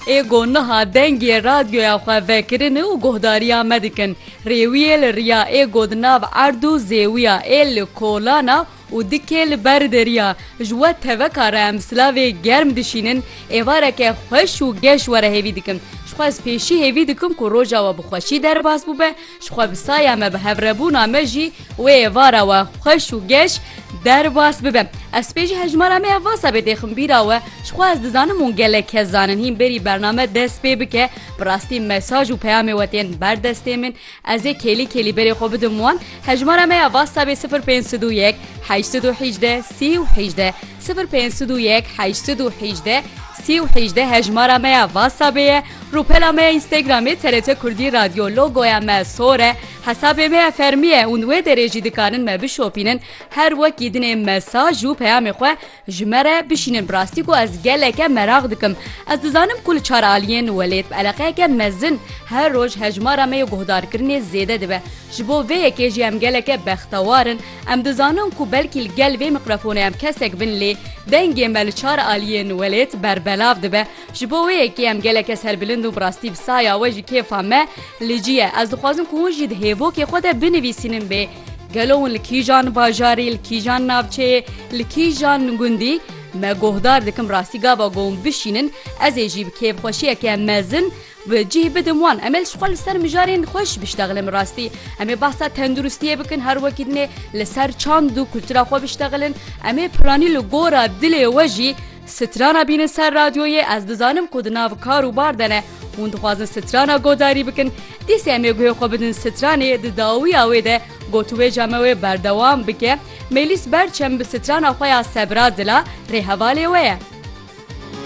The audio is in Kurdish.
Ê ku niha dengê radyoya xwe vekirin û guhdariya me dikin, rêwiyê li riya ê ku di nav erd û zêwiya ê li kolan a û dikê li ber deriya ji we teveka re em silavê germ dişînin, êvareke xweş û geş were hêvî dikim. Jixwe ez pêşî hêvî dikim ku roja we bi xweşî derbas bûbe. Ji xwe bi saya me bi hevrebûna me jî wê êvara we xweş û geş derbas bibe. Ez spê jî hejmara me ya vasa bê dêxim bîra we. Ji xwe ez dizanim hûn gelek kes zanin hîn berî bername dest pê bike bi rastî mesaj û peyamê we tên ber destê min. Ez ê kêlî kêlî berê xwe bidim wan. Hejmara me ya vasa bê sifir pênc sed û yek heşt sed û hîjdeh sî û hîjdeh sifir pênc sed û yek heşt sed û hîjdeh sî û hîjdeh hejmara me ya vasa bê ye. Rûpela me ya Instagramê TRT Kurdî Radyo, logoya me sor e, hesabê me ya fermî ye û wê derê jî dikarin me bişopînin, her wekî dinê mesaj û peyamê xwe ji me re bişînin bi rastî ku ez geleke meraq dikim. Ez dizanim ku li çar aliyên welêt bi eleqeyeke mezin her roj hejmara me ya guhdarkirinê zêde dibe. Ji bo vê yekê jî em geleke bextewar in. Em dizanin ku belkî li gel vê mîkrofonê em kesek bin lê dengê me li çar aliyên welêt berbelav dibe. Ji bo wê yekê em geleke serbilind û bi rastî bi saya we ji kêfa me li cî ye. Ez dixwazim ku hûn jî di hêvokê xwe de binivîsînin bê gelo hûn li kîjan bajarê, li kîjan navçeyê, li kîjan gundî me guhdar dikim rastî gava ku hûn bişînin ez ê jî bi kêfxweşiyeke mezin Ve cih bidim wan. Em ê ji xwe li ser mijarên xwe jî biştexilin bi rastî. Em ê behsa tenduristiyê bikin her wekî din ê li ser çand û kultura xwe biştexilin. Em ê piranî li gora dilê we jî strana bînin ser radyoyê. Ez dizanim ku di nav kar û bar de ne. Hûn dixwazin strana godarî bikin. Dîsê em ê guhê xwe bidin stranê. Di dawiya wê de gotûbêja me wê berdewam bike. Mêlîs Berçem bi strana xwe ya Sebra Dila rêhevalê we ye.